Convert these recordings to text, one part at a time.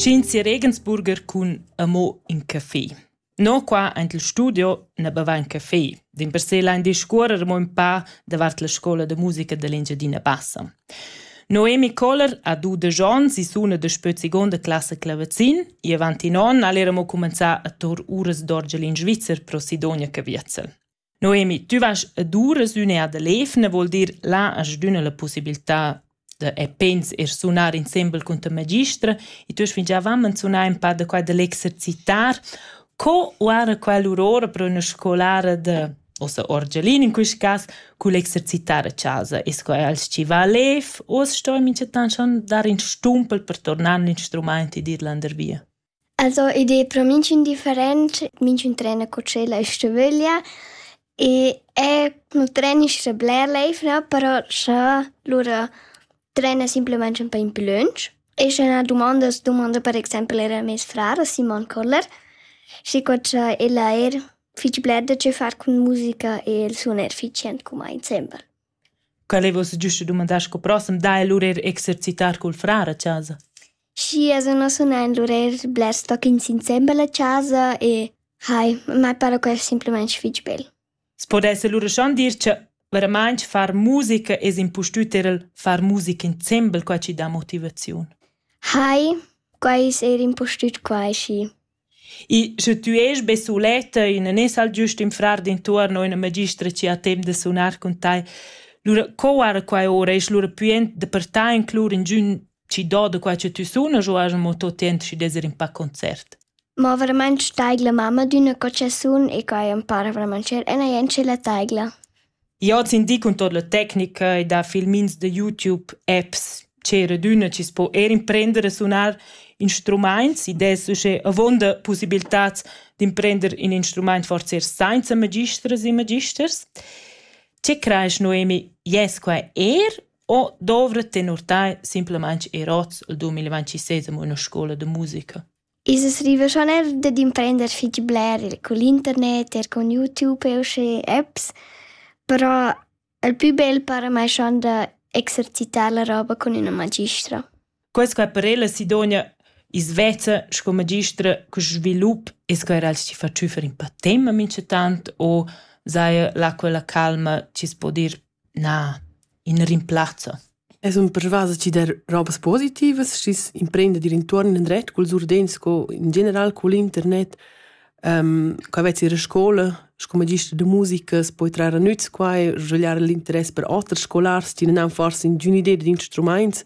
Tschinsi Regensburger cun amo in café. No qua aint il studio na bava in café. Dimpersè lain discuorrer mo ün pa davart la scola da musica dell'Engiadina Bassa. Noemi Koller ha du de Jons i suna de spö seconda classe clavazin e avanti non al eramo cumenzà a tor uras d'orgel in Svizzer pro Sidonia Caviezel. Noemi, tü vas ad uras üna ad l'evna, vuol dir là hast d'üna la pussibiltà da e pens eir sunar insembel cun ta magistra e tü hast fingià avament sunà ün pa da quai da l'exercitar. Co oara quell'ura ora pro üna scolara da ussa orgialin in quist cas cul exercitar a chasa? Es quai als chi va lev o as sto minchatant schon dar ün stumpel per tornar l'instrumaint e dir landervia? Also id es pro minchün different, minchün trena co tschela e stüvüglia e eir nu trenisch scha bler l'eivna, però scha lura trena simplamaing ün pa in pü lönch e scha üna dumanda dumanda per exaimpel eir a meis frar, a Simon Koller, schi co cha ella eir fich bler da che far cun musica e il sun eir fich jent cumà insembel. Quel ei ussa giusta dumandar sco proxim dai el lur er exercitar cul frar a casa. Schi, els non sun ein lur eir blers tocchins insembel a casa e hai, mai para quel simplamaing fich bel. Spo esser lura schon dir cha veramaing far musica es impustüt er il far musica insembel qua chi dà motivaziun. Hai, quai es eir impustüt quai schi. I sche tü est be suletta e nun es al giust ün frar d'intuorn o üna magistra chi ha temp da sunar cun tai, lura co guarda quai ora? Est lura pü aint dapertà inclur ingün chi do da quai cha tü sunas u haja amo tot temp schi d'esser ün pa a concert? Ma vermaint staigla mamma d'üna cotschezun e quai am para vermaint cher e neir in tschella taigla. Io az indi cun tot la tecnica e dà filmins da YouTube, apps, ch'eradüna chi's po eir imprender a sunar instrumaints. Id es uschè avuonda pussibiltats d'imprender ün instrumaint forsa eir sainza magistras e magisters. Che crais Noemi, jes quai eir o dovra tenor tai simplamaing eir hoz al 2026 amo üna scoula da musica? I's es rivà schon eir dad imprender fich bler cun l'internet, eir cun YouTube e usché apps, però il pü bel para mai schon da exercitar la roba cun üna magistra. Quai sco per ella Sidonia i's vezza sco magistra cun svilup e sco eir als chi fa tschüffer ün pa temma minchatant o saja là quella calma chi's po dir Na, in rimplazza. Es ün persvas chi dà robas positivas, schi's imprenda d'ir intuorn indret culs urdins sco in general cul internet. co vezz ir a scoula sco magister da musica, s'poi trar a nüz qua e svagliar l'interess per oters scolars, tü nan forsa ingün'idea d'instrumaints.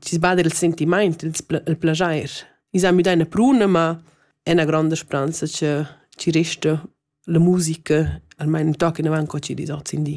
chi's bada il sentimaint, il plaschair. I s'ha müdà üna pruna, ma è üna gronda spranza cha chi resta la musica, almain ün toc inavant co chi dis hoz in di.